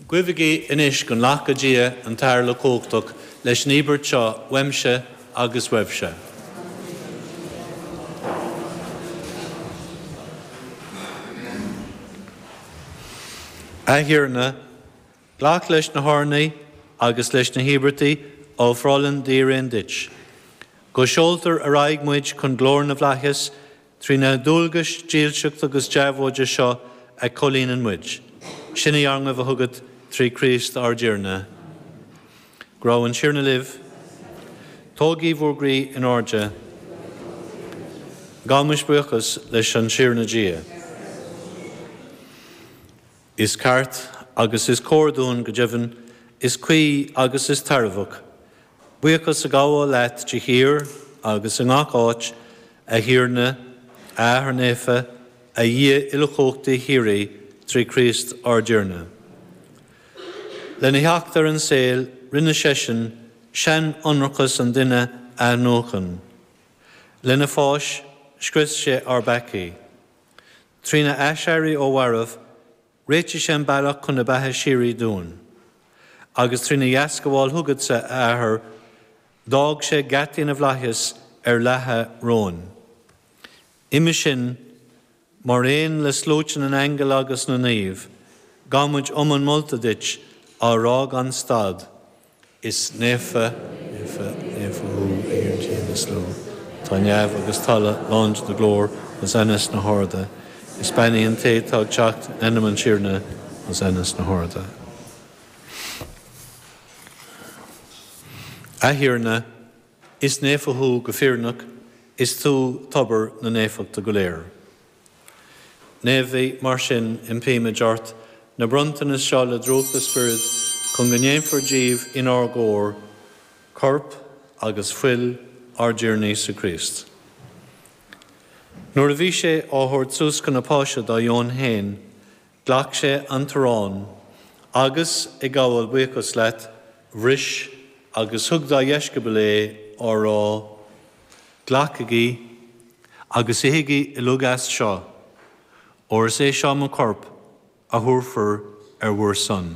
Guígí anois go nglaca Dia an tAthair Uilechumhachtach leis an íobairt seo uaimse agus uaibhse. A Thiarna, glac leis na hurnaithe agus leis na híobairtí a ofráileann d'fhíréin duit. Go seoltar ar aghaidh muid chun glóire na bhflaitheas Trí na dualgais dílseachta agus deabhóide seo a chomhlíonann muid, sin í ár nguí thugat trí Chríost ár dTiarna. Go raibh an Tiarna libh. Tógaigí bhur gcroí in airde. Gabhaimis buíochas leis an Tiarna Dia. Is ceart agus is cóir dúinn, go deimhin, is cuí agus is tairbheach, buíochas a ghabháil leat de shíor agus i ngach áit, a Thiarna, a Athair Naofa, a Dhia uilechumhachtaí shíoraí, trí Chríost ár dTiarna. Lena theacht ar an saol, rinne seisean seanionracas an duine a athnuachan. Lena pháis, scrios sé ár bpeacaí. Trína aiséirí ó mhairbh, réitigh sé an bealach chun na beatha síoraí dúinn. Agus trína dheascabháil thugadsa, a Athair, d'fhág sé geataí na bhflaitheas ar leathadh romhainn. Uime sin, mar aon le sluaite na n-aingeal agus na naomh, gabhaimid iomann molta duit, á rá gan stad, Is naofa, naofa, naofa thú, a Thiarna Dia na slua. Tá neamh agus talamh lán de do ghlóir, Hosanna sna harda. Is beannaithe an té atá ag teacht in ainm an Tiarna, Hosanna sna harda. A Thiarna, is naofa thú go fírinneach, is tú tobar na naofachta go léir. Naomhaigh, mar sin, impímid ort na bronntanais seo le drúcht do Spioraid chun go ndéanfar díobh inár gcomhair corp agus fuil ár dTiarna Íosa Críost. Nuair a bhí sé á thabhairt suas chun na Páise dá dheoin féin, Ghlac sé an t-arán agus, ag gabháil buíochas leat, bhris agus thug dá dheisceabail é á rá, Glacaigí agus ithigí uilig as seo, óir is é seo mo chorp a thabharfar ar bhur son.